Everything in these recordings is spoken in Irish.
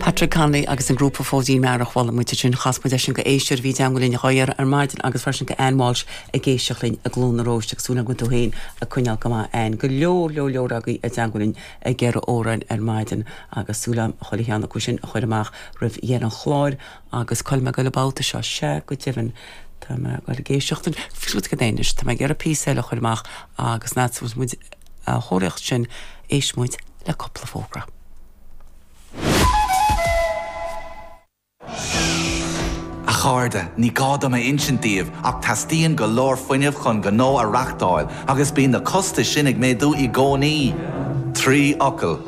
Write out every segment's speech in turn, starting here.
Patrick Connolly agus an grúpa Fóidín Mearaí, bhuail muid ansin, chas muid leis an go héisteoir a bhí i dteangmháil linn dhá iarraidh ar maidin agus freisin go Anne Walsh atá ag éisteacht linn i gCluain na Róiste agus súil agam go bhfuil tú féin ag coinneáil go maith Anne. Go leor leor leor agaibh i dteangmháil linn ag iarraidh amhráin ar maidin agus súil a'm chuile cheann acu sin a chuir amach roimh dheireadh an chláir. Agus gabhfaidh mé go hAlbain an babhta seo. Sea, go deimhin, tá muid ag goil ag éisteacht le giota go dtí anois, tá mé ag iarraidh píosa ceoil a chur amach agus an fhad is muid á thóraíocht sin, éistfidh muid le cúpla fógra. A chairde, ní gá dom a insint daoibh ach teastaíonn go leor fuinnimh chun gnó a reachtáil agus bíonn na costais sin ag méadú i gcónaí. Trí fhocal.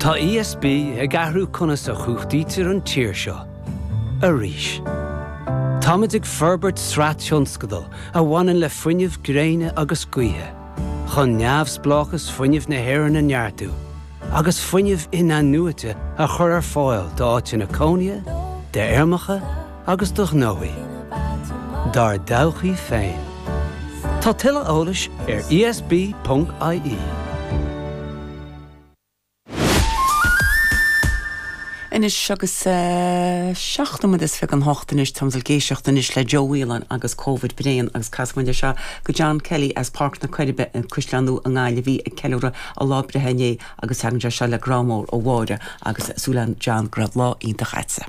Tá ESB ag athrú conas a chumhachtaítear an tír seo arís. Táimid ag forbairt sraith tionscadal a bhaineann le fuinneamh gréine agus gaoithe, chun neamhspleáchas fuinnimh na hÉireann a neartú agus fuinneamh in-athnuaite a chur ar fáil d'áiteanna cónaithe, d'fheirmeacha, agus do ghnóthaí. Dár dtodhchaí féin. Tá tuilleadh eolais ar ESB.ie. Anois agus seacht nóiméad is fiche chun a hocht anois tá muid ag goil ag éisteacht anois le Joe Whelan agus Covid Bréan agus casfaidh muid leis seo go John Kelly as Páirc na Coiribe sa gCaisleán Nua i nGaillimh a bhí ag ceiliúradh a lá breithe inné agus tagann sé seo le grá mór ó Mháire agus súil againn John go raibh lá iontach a'tsa.